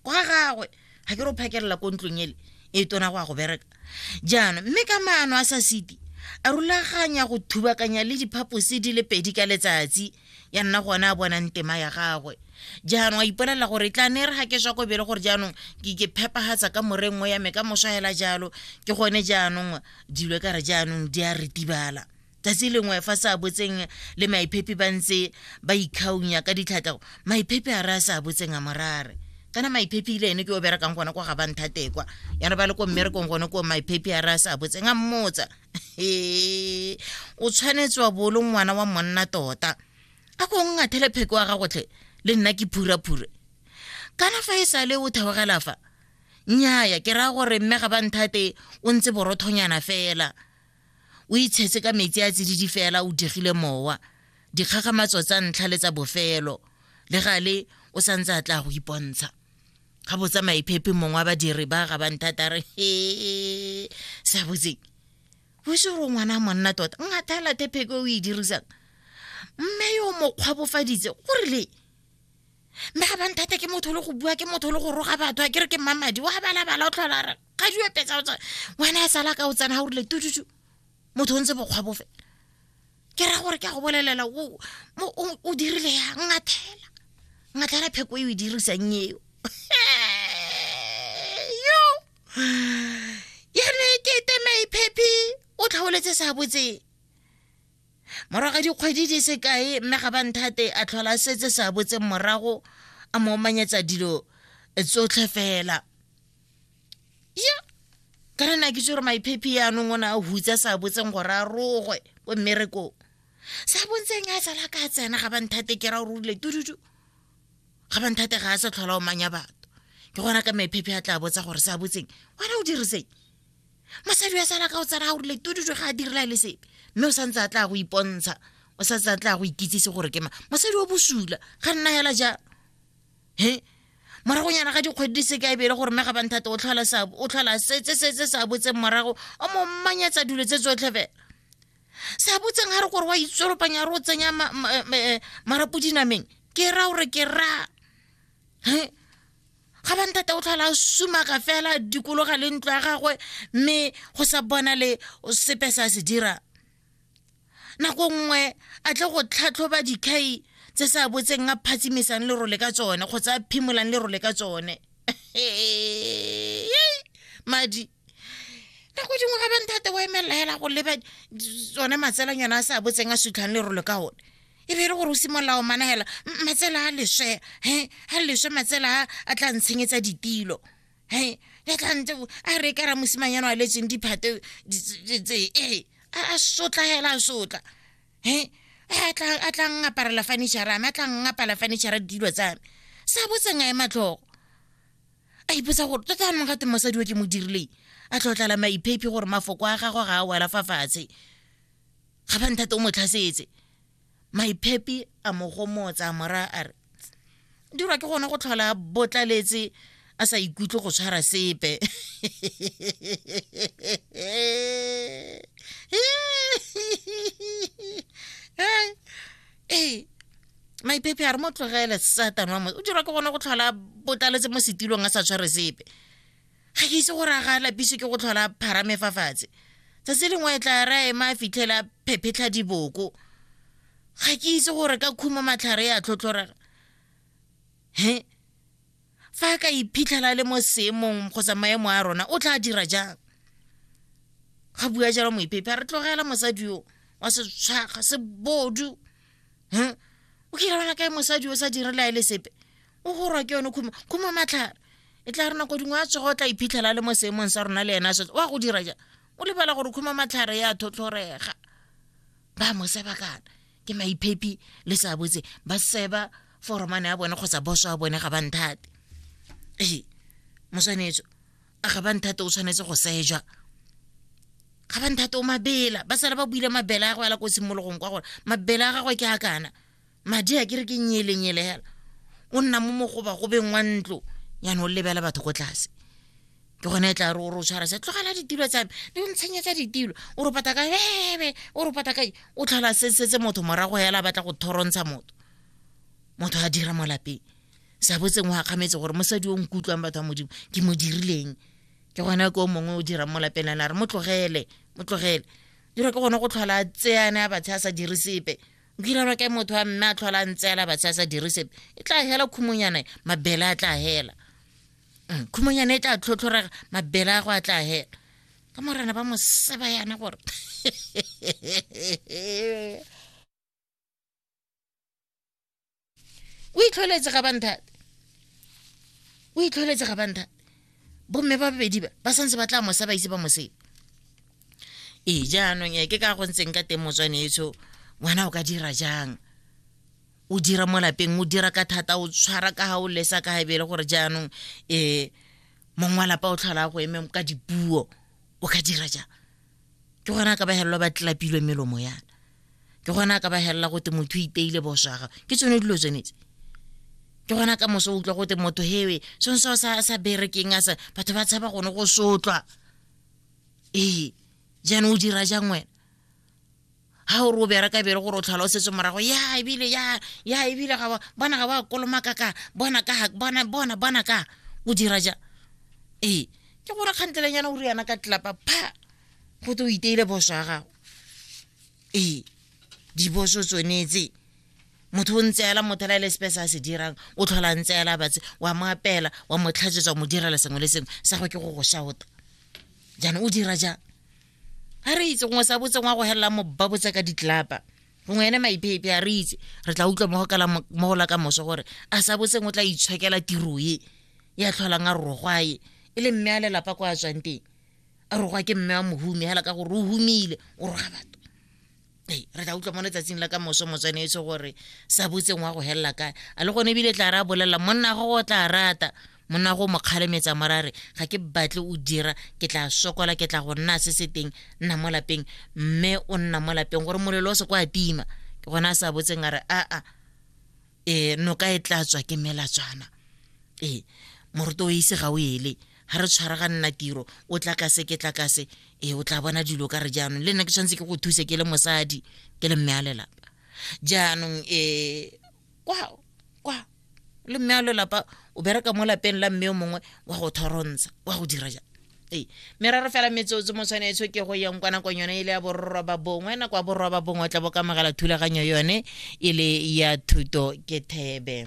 kwa gagwe ga ke ro phakelela ko ntlong ele e tona go ya go bereka jaanong mme ka maano a sa siti a rulaganya go thubakanya le diphaposi di le pedi ka letsatsi ya nna gone a bonang tema ya gagwe jaanong a ipolelela gore e tla ne re ga ke swa ko bele gore jaanong ke phepagatsa ka morengwe ya me ka moswa fela jalo ke gone jaanong dilo e ka re jaanong di a retibala tsatsi lengwe fa sa botseng le maiphepi ba ntse ba ikgaunya ka ditlhatlago maiphepi a re a sa botseng a morare kana maiphepi ile ene ke o berekang gone kwa ga banthatekwa yana ba le ko mmerekong gone ko maiphepi a re a sa botseng a mmotsa e o tshwanetse wa bolo ngwana wa monna tota a ko ngathele pheko wa gagotlhe le nna ke phuraphura kana fa e sale o theogela fa nnyaya ke raya gore mme ga ba nthate o ntse borothonyana fela o itshetse ka metsi a tsididi fela o digile mowa dikgagamatso tsa ntlha le tsa bofelo le gale o sa ntse a tla go ipontsha ga botsa maiphepe mongwe wa badiri ba ga banthatare he sa botseng o se gore ngwana monna tota ngathala thepheke o e dirisang mme yo mokgwa bofaditse go rile mme ga banthata ke motho le go bua ke motho le go roga batho a ke re ke mmamadi wa balabala o tlhola re ga di epetsa wena e sala ka o tsena ga o rile tututu motho o ntse bokgwa bofe ke ra gore ke a go bolelela o dirile ya ngathela ngathela pheko e o e dirisang eo yo yane ke temei phephi o tlhaoletse sa botseng morago ga dikgwedi di se kae mme ga banthate a tlhola setse sa botseng morago a mo omanyetsa dilo tsotlhe fela ya ka re na ke tse gore maiphephi yaanong o ne a hutsa sa botseng gore a rogwe ko mmerekong sa bontseng a tsala ka tsena ga banthate ke ra o rulile tududu ga banthate ga a sa tlhola o manya batho ke gona ka maiphephi a tla botsa gore sa botseng wena o diriseng mosadi wa sala ka o tsena a o rile tududu ga a direla le sepe mme o santse a tla go ipontsha o santse a tla go ikitsise gore ke ma mosadi o bosula ga nna hela jalo he moragonyana ga dikgwedi di seka ebele gore mme ga banthata o tlhola setse se se sa botseng morago o mo mmanyatsa dilo tse tsotlhe fela se a botseng ga re gore wa itsolopanya re o tsenya eh, marapo dinameng ke ra gore ke ra ga banthata o tlhola sumaka fela dikologa le ntlo ya gagwe mme go sa bona le sepe sa se dirang nako nngwe a tle go tlhatlhoba dikhai tse sa botseng a phatsimisang lerole ka tsone kgotsa a phimolang lerole ka tsone madi nako dingwe ga banthate wa emelela hela go leba tsone matselang yone a sa botseng a sutlhang lerole ka one e be e le gore o simolola o managela matsela a leswe he a leswe matsela a a tla ntshenyetsa ditilo hei ya tlante a re ka ra mosimanyana wa letseng diphate tse ee a sotla hela a sotla he a tla ngaparela furniture ame a tla ngapala furniture dilo tsa me sa botseng a e matlhogo a ipotsa gore tota anong gate mosadi o ke mo dirileng a tlhotlala maiphephi gore mafoko a gagwe ga a wela fa fatshe ga ba nthate o mo tlhasetse maiphepi a mo gomotsa mora a re dirwa ke gone go tlhola a botlaletse a sa ikutlwe go tshwara sepe ee maipepe a re mo tlogele satane wa mo o dirwa ke gone go tlhola botlaletse mo setilong a sa tshware sepe ga ke itse gore a ga lapiso ke go tlhola pharame fa fatshe tsatsi lengwe e tla ra ema a fitlhela phephetlha diboko ga ke itse gore ka khumo matlhare ya tlhotlhorega he fa a ka iphitlhela le mo seemong kgotsa maemo a rona o tla dira jang ga bua jalo moipepe a re tlogela mosadi yo wa setshwaga sebodu huh? o kira bona kae mosadi o sa direla e le sepe o gorwa ke yone khumo khumo matlhare e tla re nako dingwe a tsogo o tla iphitlhela le mo seemong sa rona le ena a setse wa go dira ja o lebala gore khumo matlhare ya thotlhorega ba mo seba kana ke maiphepi le sa botse ba seba foromane ya bone kgotsa boso ya bone ga ba nthate ee moswanetso a ga ba nthate o tshwanetse go seja ga ba nthate o mabela ba sala ba buile mabela a go ela ko simologong kwa gore mabela a gagwe ke a kana madi a ke re ke nyelenyele hela o nna mo mogoba go beng wa ntlo yana o lebela batho ko tlase ke gone e tla re o re o tshwara se tlogela ditilo tsame di o ntshenyetsa ditilo o re pata ka bebe o re pata ka o tlhola sesetse motho morago hela batla go thorontsha motho motho a dira mo lapeng sa botseng wa akgametse gore mosadi o nkutlwang batho ba modimo ke mo dirileng ke gona ke o mongwe o dirang mo lapeng ana re mo tlogele mo tlogele dira ke gone go tlhola tseane a batshe a sa dire sepe o direlwa ke motho wa mme a tlhola a ntseela batshe a sa dire sepe e tla hela khumonyana mabele a tla hela mm, khumonyana e tla tlhotlhorega mabele a go a tla hela ka morena ba moseba yana gore o itlholetse ga banthate o itlholetse ga banthate bomme ba babedi ba ba santse ba tla mosa ba ise ba mosebe ee jaanong e ke ka go ntseng ka teng motswane etsho ngwana o ka dira jang o dira mo lapeng o dira ka thata o tshwara ka ga o lesa ka ga bele gore jaanong um mong wa lapa o tlhola go eme ka dipuo o ka dira jang ke gone a ka ba helelwa ba tlelapilwe melomo yana ke gone a ka ba helela gote motho o ipeile boso a gago ke tsone dilo tsenetse ke gona ka moso utlwa gote motho hewe sone seo sa berekeng a sa batho ba tshaba gone go sotlwa ee jaanong o dira jang wena ga o re o bereka bere gore o tlhola o setse morago ya ebile ya ya ebile ga bona ga ba kolomaka ka bona ka bona bona bona ka o dira ja ee ke gore kgantelenyana o riana ka tlelapa pha go te o iteile boso ya gago ee diboso tsonetse motho o ntseela motho la e le sepe se a se dirang o tlhola ntseela batse wa mo apela wa mo tlhatsetsa wa mo direla sengwe le sengwe sa go ke go go shauta jaanong o dira jang a re itse gongwe sa botseng wa go helela mo ba botse ka ditlapa gongwe ene maipeipe a re itse re tla utlwa mo go la ka moso gore a sa botseng o tla itshwekela tiro e ya tlholang a rogwa e e le mme a lelapa ko a tswang teng a rogwa ke mme wa mohumi hela ka gore o humile o roga batho ee re tla utlwa mo letsatsing la ka moso motswanetse gore sa botseng wa go helela kae a le gone ebile tla re a bolelela monna go go tla rata monna go mo kgalemetsa morare ga ke batle o dira ke tla sokola ke tla go nna se se teng nna mo lapeng mme o nna mo lapeng gore molelo o se kwa tima ke gona a sa botseng a re aa e noka e tla tswa ke melatswana e moruta o ise ga o ele ga re tshwara ga nna tiro o tla kase ke tla kase e o tla bona dilo ka re jaanong le nna ke tshwanetse ke go thuse ke le mosadi ke le mme a lelapa jaanong e kwa kwa le mme a lelapa o bereka mo lapeng la mme o mongwe wa go thorontsha wa go dira jang ee meraro fela metsotso mo tshwanetswe ke go yeng kwa nakong yone e le ya bororoba bongwe nako ya bororoba bongwe o tla bo kamogela thulaganyo yone e le ya thuto ke thebe